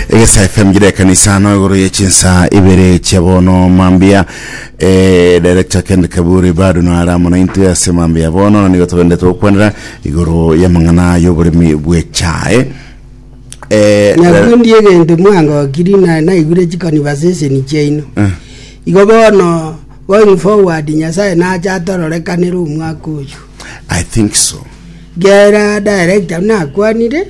egesa fm gire ekanisa ano igoro ye chinsa ibere chia bono mambia eh, director kend kaburi bado nare amo naintwe ase mambia bono na nigo togende togokwanera igoro y'amang'ana y'oboremi bw'echae eh, nabwo ndi egento mwangokiri na naigure chikonibaseseni chiaino eh, igo bono going forward nyasaye nacha atororekanere omwaka oyo i think so gera director nakwanire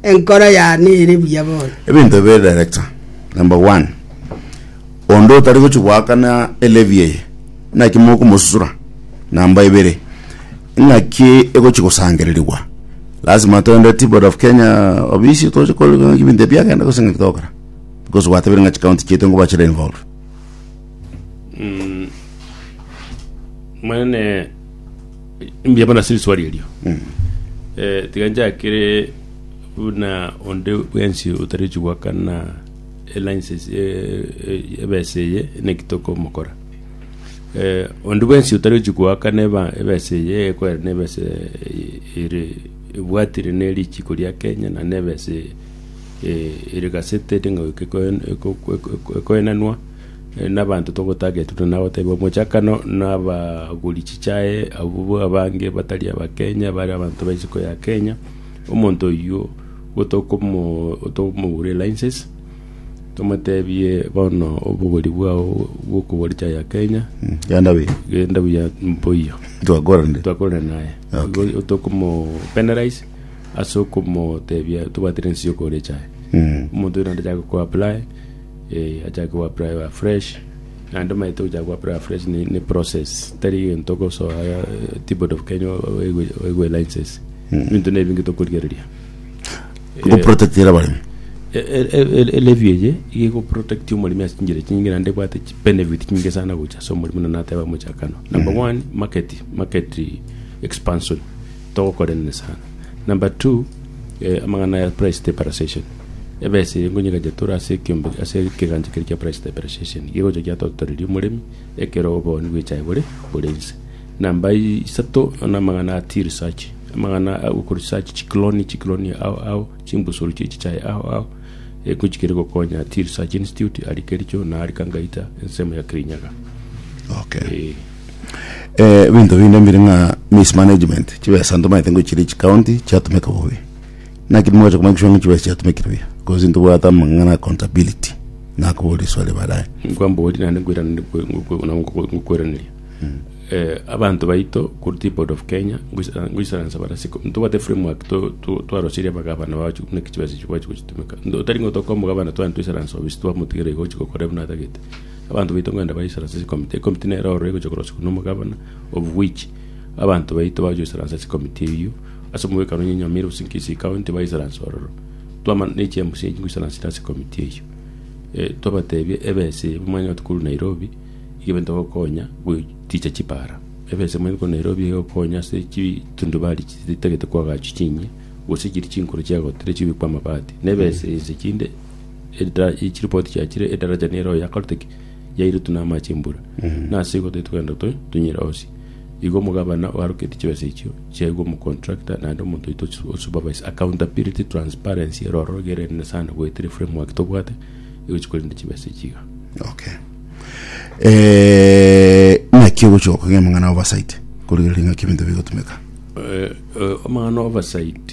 Enkoro yane ere buya bono. Ebinto ebi biri director. Number one, onde otari gochi goakana elevy eye, naki mokomosusura. Number ibere, ng'aki egochi gosangererigwa. Lasima toende tea board of Kenya obisi toche kore ng'aki ebinto ebi biagenda gose ng'aki togokora. Because gwatebire ng'a chikaunti chiaito nigo bachire involved. Mwene Mbuya mono ase riswali erio. Eh, tiga nchakere buna onde bwensi otariochi goakana elincense eh, eh, ebesa eye naki tokomokora eh, onde bwensi otariochi goakana eba- ebesa eye ekoera na ebesa eh, ere ebwatire na erichiko ria kenya na na ebesa eh, ere gasete ting'oike ekoenanwa nabanto togotagetia buna nagotebiwa mochakano nabagori chichae abwo abange batari abakenya bare abanto ba isiko ya kenya omonto oyio gotokomo tokomogure license tomotebie bono obogori bwao bwokogora echae ya kenya Genda buya. genda buya mboiyo Twakorande. twakore naye Okay. Igo tokomo penalize ase okomotebia tobwatire ensi yokogora echae Mm. omonto oyo naende achake koapply Eeh achake go apply a fresh, naende omanyete ogochaka go apply a fresh ne ne process tari egento ogosoa ti board of Kenya oigwe oigwe license. Ebinto na ebinge tokorigereria. Go protectera abaremi. E- e- e- e- e levy eye iga ego protect omoremi ase chinchera chinge naende ebwate chi benefit chinge sana gocha ase omoremi buna nateba mochakano. Number one, market market expansion, Togokorenene sana. Number two, amang'ana aya price stabilization, ebesa eye ngonye egacha tore ase ekiombe ase ekegancha keria kia price stabilization, igo egocha giatotoreria omoremi ekero obooni bwe echae bore bore inse. Number i- isato, na amang'ana a tea research, amang'ana a goko research chikloni chikloni ao ao, chimbusuru chie chichae ao ao, eko chikere gokonya tea research institute, aria Kericho na aria Kangaita, ensemo ya Kirinyaga. Okay. Eeh. ebinto binde mbire ng'a mismanagement chibesa ntomaete ngochiria echi county chiatomeka bobe naki nimogocha komanya gochia ng'a chibesa chiatomekire buya cause ntobwate amang'ana accountability nakoboria eswali baadaye nkwambori naende nkweraniri kwe- nkwe- nabo nkwe- nkweraneria Eh, abanto baito korwa tripod of kenya ngoisa- ngoisaransa bare ase ko- ntobwate framework to- to- twaroseria abagavana bagochi buna ki chibesa echi bagochi gochitomeka Ndo- tari ng'a otoka omogavana tware toisaransa obisi twamotigera iga ochi gokora buna atagete Abanto baito ngwenda baisore ase chikomiti. Ekomiti nero ororo egochia korosigwa nomogabana of which abanto baito bagochia goisora ase chikomiti eyio ase omogwekano onye Nyamira gose Kisii county baisaranse ororo. Twamana ne chi mca echi ngoisaransete ase ekomiti eyio twabatebia ebesa eye mwanyora tokorwa Nairobi iga ebento egokonya goticha chipara. Ebesa eye mwanyete korwa Nairobi iga egokonya ase chitundubari chitagete koagachwa chinyia gose chiria chinkoro chiagotire chibekwe amabati. Na ebesa ense chinde. edara e chiripoti chiachire edaraja nere oyo yakorete ki yairutu na amache embura na ase igo titogenda to tunyira osi igo omogabana oaroketi chibesa echio chiaigwa omocontractor naende omonto oito osu- osupervise accountability transparency eroro gerende sana goetire framework tobwate igo chikorenda chibesa echi iga okay Eh, naki ogochoka ng'a amang'ana oversight korigereria ng'aki ebinto bigotumeka Eh, eh, omang'ana oversight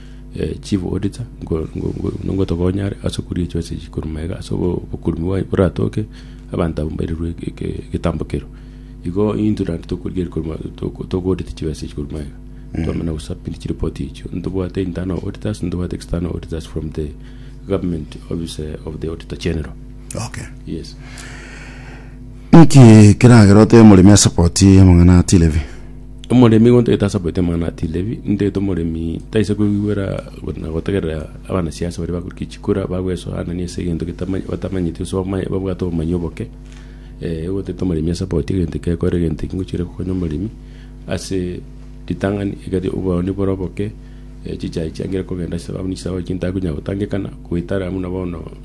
eh, chief auditor ngo- ngo- ngo- nongotokonyare ase okuria echo ase chikoruma iga ase obo- oborumi bwaye boratoke abanto abo mbairerwe eke- eke- egetambo kero igo intwe naende tokorigeria koruma toko- tokoaudit chibesa echi koruma iga twamana gosubmit chireport echio ntobwate internal auditors ntobwate external auditors from the government office eh, of the auditor general okay yes Inki keragera otebe omoremi asapoti amang'ana a Tilevi? Omoremi gontagete asapoti amang'ana a Tilevi, intagete omoremi taise koigwera go- na gotegerera abanasiasa baria bakoriki chikura bagwesoanania ase egento getama- batamanyeti gose bamaye babwate obomanyi oboke. gontagete omoremi asapoti egento eke ekore egento eki ngochire kokonya omoremi ase ritang'ani egari obooni bore oboke chichai chiangire kogenda ase ababisa baye chintakonya gotangekana goetara buna bono.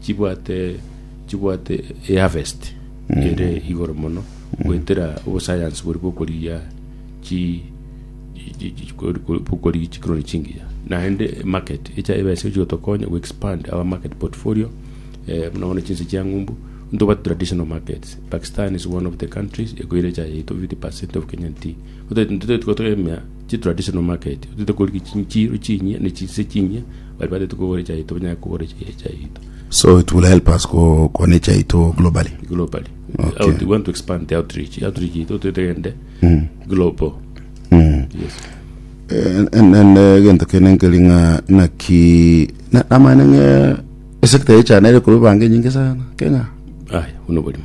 Chibwate, chibwate eharvest ere igoro mono goetera obosayansi bori bokorigia chi chi- chi- chi- kori- kori- bokorigia chikroni chingiya naende market echa ebese gochi gotokonya go expand our market portfolio eh, buna bono chinse chia ng'umbu ntobwate traditional markets pakistan is one of the countries ekoira echae yaito 50 percent of kenyan tea Otagete intwe tari gotegemea chi traditional market, otagete korigia chi- chiro chinyia ne chinse chinyia, bari batagete kogora echae yaito banyare kogora echae echae yaito So it will help us ko kona echae yaito globally. globally. Okay. Out, we want to expand the outreach. Outreach yaito otagete egende global. Yes. Eh, en- en- eh, gento kene nkeri ng'a naki na- namanya ng'e esekta yechana ere korwa bange nyinge sana kenya Aya, buno oborimo.